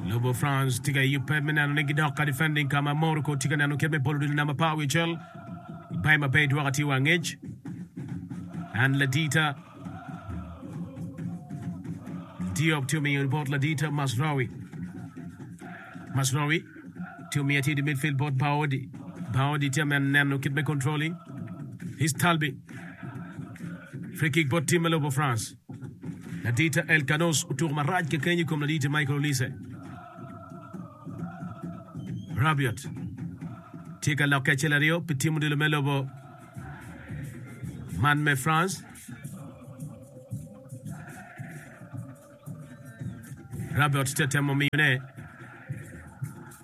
Lobo France tye ka iyo pep me neno ni gidok ka defending ka ma Morocco tye ka neno kit me bolo odilo namba par wiye cel. Bay ma bay dwoka tye wa angec. And Ladita Diop tye omiyo bot Ladita Masraoui. Masraoui tye omiyo tye i midfield bot Baodi. Baodi tye men neno kit me controlling. His Talbi. Free kick bot tim me Lobo France. Ladite El Canos otuko marac kekeny i kom ladite Michael Olise. Rabiot tye ka lokke acel aryo pi tim odilo me lobo man me France. Rabiot tye temo miyone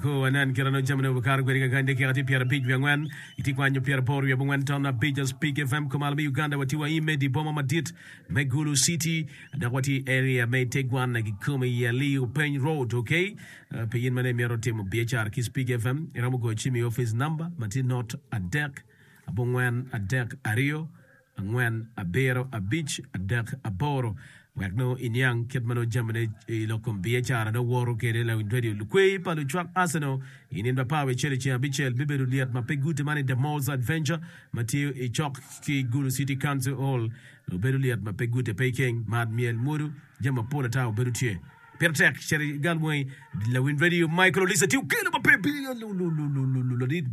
Kur wanen kit ma nongo jamine obikato kwede keken dakika tye pyerabic wiye angwen. Itye kwanyo pyeraboro wiye abongwen ton abic as Big FM kumalo me Uganda watye wa Imedi i boma madit me Gulu City dok watye i area me Itegwana kikome i Ali Openy Road ok pi in mane imito timo biacara ki Big FM iromo goyo cim i office number matye not adek abongwen adek aryo angwen, abiro, abic, adek, aboro wek nongo iniang kit ma nongo jamine i lok kom biacara nongo woto kwede lawiny redio. Lukweyi pa lucwak Arsenal i nino pa Power Cene ceng abicel bibedo lyet ma pe gute man i The Moors Adventure ma tye i cok ki Gulu City Council Hall. Obedo lyet ma pe gute pe ikeng, mar, myel, mwodo, jami mapol ata obedo tye. Pire tek cito i gal moni. Lawiny redio Michael Olisa tye okelo ma pe bili ladit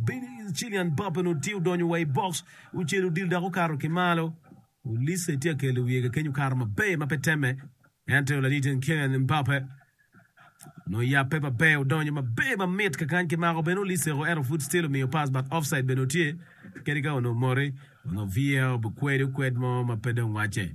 Cillian Mbappe nongo tye odonyo wa i box. Ocelo odilo dok okato ki malo. Olise tye ka kelo wiye kakeny okato maber ma pe temme ento lalite Kylian Mbappe nongo oyabbe maber odonyo maber ma mit kakany ki mako bene Olise o ento pud still omiyo pass but offside bene otye kadi ka onongo moti onongo VAR obikwede okwed mo ma pe dong wacce.